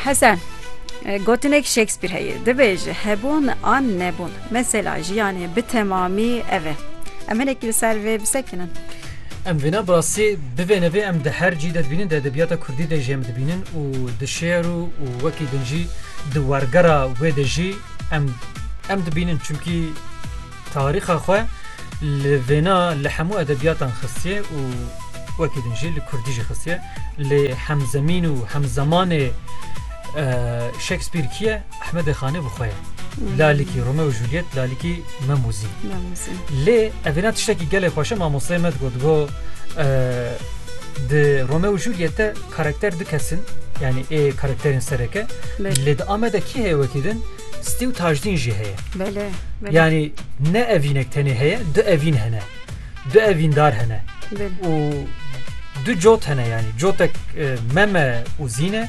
Hesen, gotinek Shakespeare heye, dibêje hebûn an nebûn. Mesela jiyanê bi temamî ev e. Em hinekî li ser vê bisekinin. Em vêna bi rastî bivê nevê em di her cî de dibînin, di edebiyata Kurdî de jî em dibînin û di şêr û û wekî din jî di wergera wê de jî em em dibînin. Çimkî Tarîxa xwe li vêna li hemû edebiyatan xistiye û wekî din jî li kurdî jî xistiye. Lê hemzemîn û hemzemanê Shakespeare kî ye? Ehmedê Xanê bi xwe ye. Lalikî Rome û Juliet, lalikî Memûzî. Lê ev vêna tiştekî gelê xweşe mamosteyê me digot go di Rome û Juliet de karakter du kesin yanî ê karakterên sereke lê di Amede kî heye wekî din Stî û tajdîn jî heye. Belê. Yanî ne evînek tenê heye, du evîn hene. Du evîndar hene. Û du cot hene yanî. Cotek e, meme û zîne,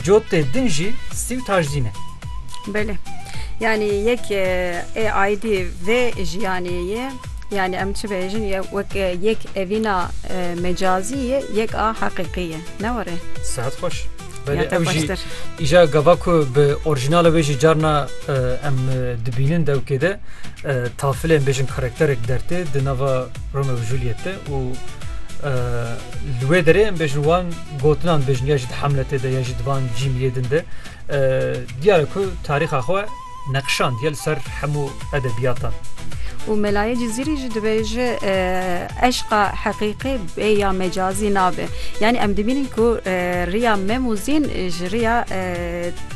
cotê din jî stî û tajdîn e. Belê. Yanî yek e, ê aydî vê jiyanê ye. Yani em çi bêjin ye wek e, yek evîna e, mecazî ye, yek a heqîqî ye. Ne were? Sehet xweş. Belê ew jî îja gava ku bi orîjinala wê jî carna em dibînin dewkê de tafilên bêjin karakterek dertê di nava Rome û Juliette û li wê derê em bêjin wan gotinan bêjin ya jî di hemletê de ya jî divan cîmiyê din de diyar ku tarîxa xwe Neqşandiye li ser hemû edebiyatan. Û Melayê Cizîrî jî dibêje eşqa heqîqî bê ya mecazî nabe. Yanî em dibînin ku riya mem û zîn ji riya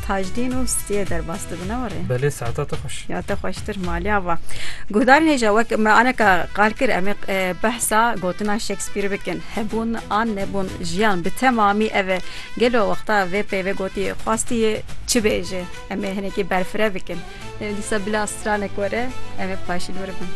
tajdîn û stiyê derbas dibe ne were? Belê saeta te xweş. Ya te xweştir maliya va. Guhdarên hêja wek me aneka qal kir em ê behsa gotina Shakespeare bikin. Hebûn an nebûn jiyan bi temamî ev e. Gelo wexta vê peyvê gotiyê xwastiyê çi bêje? Em ê hinekê berfireh bikin. Dîsa bila stranek were, ev ê paşîn were bin.